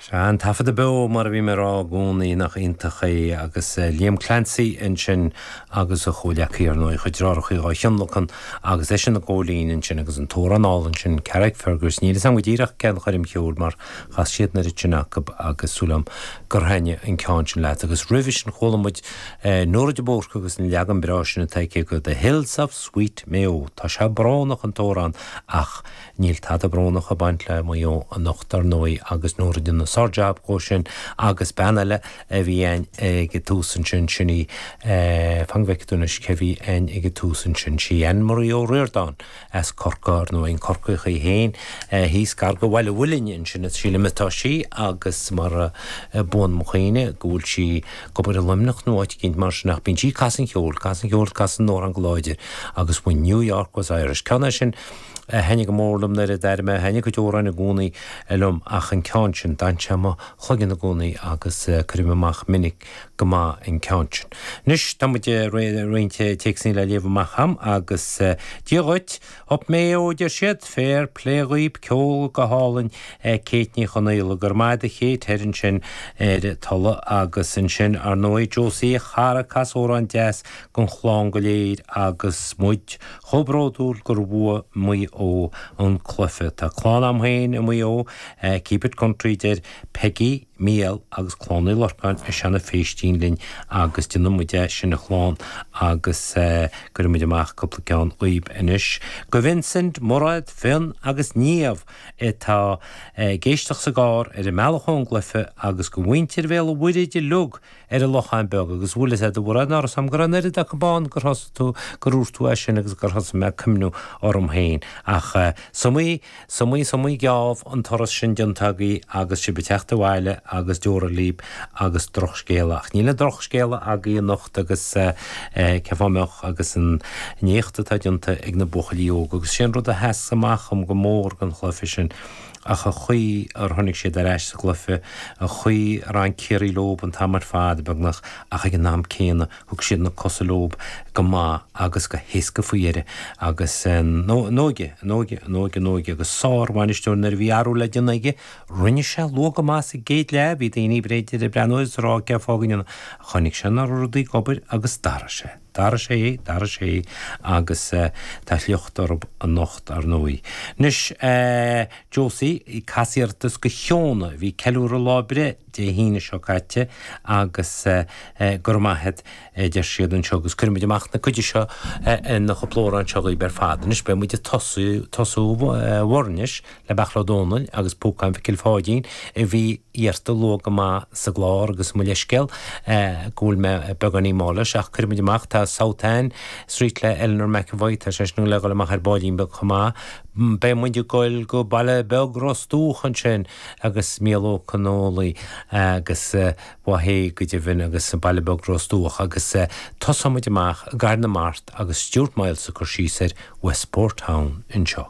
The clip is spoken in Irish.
Sea, an taifeadadh beo, mar a bhím ag rá i gcónaí, nach iontach é, agus Liam Clancy ansin agus a chomhghleacaithe, ar ndóigh, a chuid dreárachaí dhá thionlacan agus eisean ag gabháil fhoinn ansin agus an t-amhrán álainn sin, Carrickfergus, níl 'fhios a'm go díreach cén choirm cheoil mar chas siad an oiread sin acub agus súil a'm gur thaitnigh an ceann sin leat agus roimhe sin chuala muid Nóra de Búrca agus an leagan breá sin atá aici de The Hills of Sweet Mayo, tá sé brónach, an t-amhrán, ach. Níl tada brónach ag baint le Maigh Eo anocht dar ndóigh agus Nóra ag déanamh sár jab dhó sin agus bean eile a bhí a'ainn ag tús ansin sin í fan go bhfeice tú anois cé bhí a'ainn ag tús ansin sí Ann Marie Ó Riordán as Corcaigh ar ndóigh an Corcaíoch í fhéin thíos gar go Bhaile Mhuilinn ansin is sílim atá sí agus más buan mo chuimhne go bhfuil sí ag obair i Luimneach nó áit eicínt mar sin ach bíonn sí ag casadh an cheoil casadh an cheoil casadh na n-amhrán go láidir agus when New York was Irish ceann é sin a thaitnigh go mór liom nuair a d'airigh mé, thaitnigh a cuid amhráin i gcónaí liom ach an ceann sin, d'fhan sé i mo chloigeann i gcónaí agus cuirim amach minic go maith an ceann sin. Anois, tá muid réidh roinnt téacsanna le léamh amach a'm agus Dia dhuit, Up Mayo, a deir siad, féar plé dhaoib, ceol go hálainn, Kate Ní Chonaola, go raibh maith a'd Kate thoir ansin ar Tola agus ansin, ar ndóigh, Josie a chara, cas amhrán deas gon chlann go léir agus muid, Chomh bródúil gur bhuaigh Maigh Eo an cluiche. Tá clann agam féin i Maigh Eo. Keep it country deir Peggy, Mícheál agus Clann Uí Lorcáin as Seanadh Phéistín linn agus déanfaidh muid é sin a chlann agus cuirfidh muid amach cúpla ceann dhaoib anois go Vincent, Mairéad, Fionn agus Niamh atá ag éisteacht sa gcarr ar a mbealach ón gcluiche agus go mhuintir Bhéal an Mhuirthid uilig. ar an Lochán Beag agus bhuail sé de bharr an amhras a'm go raibh an oiread acub ann gur thosaigh tú, gur dhúirt tú é sin agus gur thosaigh mé ag cuimhniú orm féin. Ach is iomaí, is iomaí, is iomaí geábh an turas sin déanta agaí agus sibh ag teacht abhaile agus deora líb agus drochscéala. Ach níl aon drochscéala agaí anocht agus cén fáth a mbeadh agus an éacht atá déanta ag na buachaillí óga agus sé an rud a sheas amach dhom go mór den chluiche sin, ach an chaoi ar tháinig siad ar ais sa gcluiche, an chaoi ar fhan Ciarraí leob an t-am ar fad, beagnach, ach ag an am céanna, thug siad na cosa leob go maith agus go héasca faoi dheireadh agus an óige, an óige, an óige, an óige agus sár-bhainisteoir nuair a bhí athrú le déanamh aige, rinne sé luath go maith sa gcéad leath, bhí daoine b'fhéidir ag breathnú agus ag rá cén fáth go ndearna, ach choinnigh sé na rudaí ag obair agus d'athraigh sé. D'athraigh sé, d'athraigh sé agus tá a shliocht oraib anocht ar ndóigh. Anois Josie, cas iarratas go ciona, bhí ag ceiliúradh lá breithe Dé hAoine seo caite agus go raibh maith agat a deir siad anseo agus cuirfimid amach na cuidigh seo ina chúpla amhrán seo dhaoibh ar fad. Anois beidh muid ag tosú bhur n-anois. le Beachla Ó Dónaill agus Púcán Mhicil Pháidín a bhí iarrta luath go maith sa gclár agus mo leithscéal go bhfuil mé beagáinín mall leis ach cuirfidh muid amach tá South Anne Street le Eleanor McEvoy tá sé sin le dhul amach ar ball beag chomh maith beidh muid ag goil go baile beag Ros Dúch ansin agus míolóca Noli agus ba hea go deimhin agus baile beag Ros Dúch agus tosóidh muid amach i gCarn na Mart agus Stuart Myles ag cur síos ar Westport Town anseo.